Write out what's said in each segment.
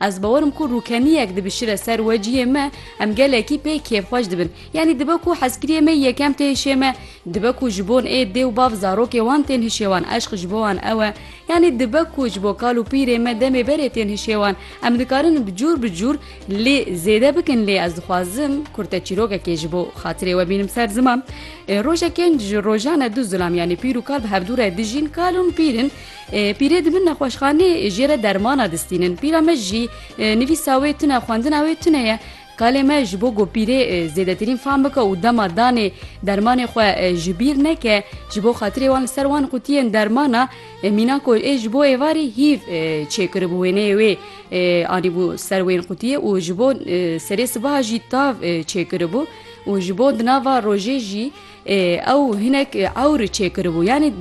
Ez bawer im ku rûkeniyek dibişire ser we ciyê me em gelekî pê kêfxweş dibin. Yanî dibe ku hezkiriyê me yekem tê hişê me, dibe ku ji bon ê dê û bav zarokê wan tên hişê wan eşq ji bo wan ew e. Yanî dibe ku ji bo kal û pîrê me demê berê tên hişê wan. Em dikarin bi cûr bi cûr lê zêde bikin lê ez dixwazim kur te çîrokekê ji bo xatirê we bînim ser ziman. Rojekên ji rojan e du zilam yanî pîr û kal bi hevdû re dijîn, kal ûn pîr in. Pîrê di bin nexweşxanê jê re dermana distînin. Pîra me jî nivîsa wê tune, xwendina wê tune ye. Kalê me ji bo ku pîrê zêdetirîn fam bike û dema danê dermanê xwe ji bîr neke, ji bo xatirê wan li ser wan qutiyên dermana mîna ku ê ji bo êvarê hîv çêkiribû wêneyê wê anîbû ser wên qutiyê û ji bo serê sibaha jî tav çêkiribû û ji bo di nava rojê jî Ew hinek ewr çêkiribû yanî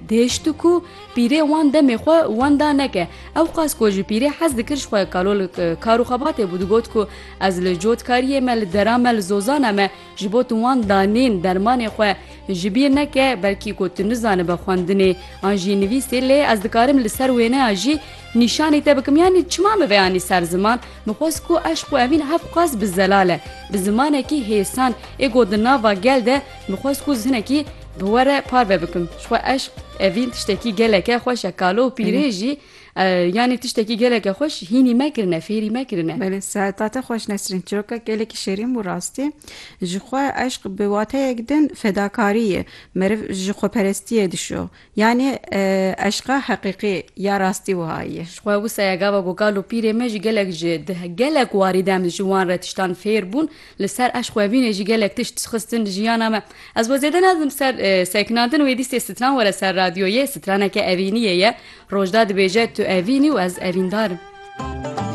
dihêşt ku pîrê wan demê xwe wenda neke. Ew qas ku ji pîrê hez dikir ji xwe kalol kar û xebatê bû digot ku ez li cotkariyê me li dera me li zozana me ji bo tu wan danên dermanê xwe ji bîr neke belkî ku tu nizanibe xwendinê an jî nivîsê lê ez dikarim li ser wêneya jî nîşanî te bikim yanî çima min vê anî ser ziman Min xwest ku eşq û evîn hevk qas bi zelal e, bi zimanekî hêsan ê ku di nava gel de min xwest ku jinekî bi we re parve bikim. Ji xwe eşq, evîn tiştekî geleke xweş e. Kalo û pîrê jî yanî tiştekî geleke xweş hînî me kirine, fêrî me kirine. Belê seta te xweş Nesrîn. Çîroka gelekî şêrîn bû rastî. Ji xwe eşq bi wateyek din fedakarî ye. Meriv ji xweperestiyê dişo. Yanî eşqa heqîqî ya rastî wiha ye. Ji xwe wisa ye gava ku kal û pîrê me jî gelek ji di gelek warî dem de ji wan re tiştan fêr bûn. Li ser eşqwevînê jî gelek tişt xistin di jiyana me. Ez xwe zêde nadim ser sekinandin wê dîstê stran were ser radyoyê. Straneke evîniyê ye. Rojda dibêje tu evîn î û ez evîndar im.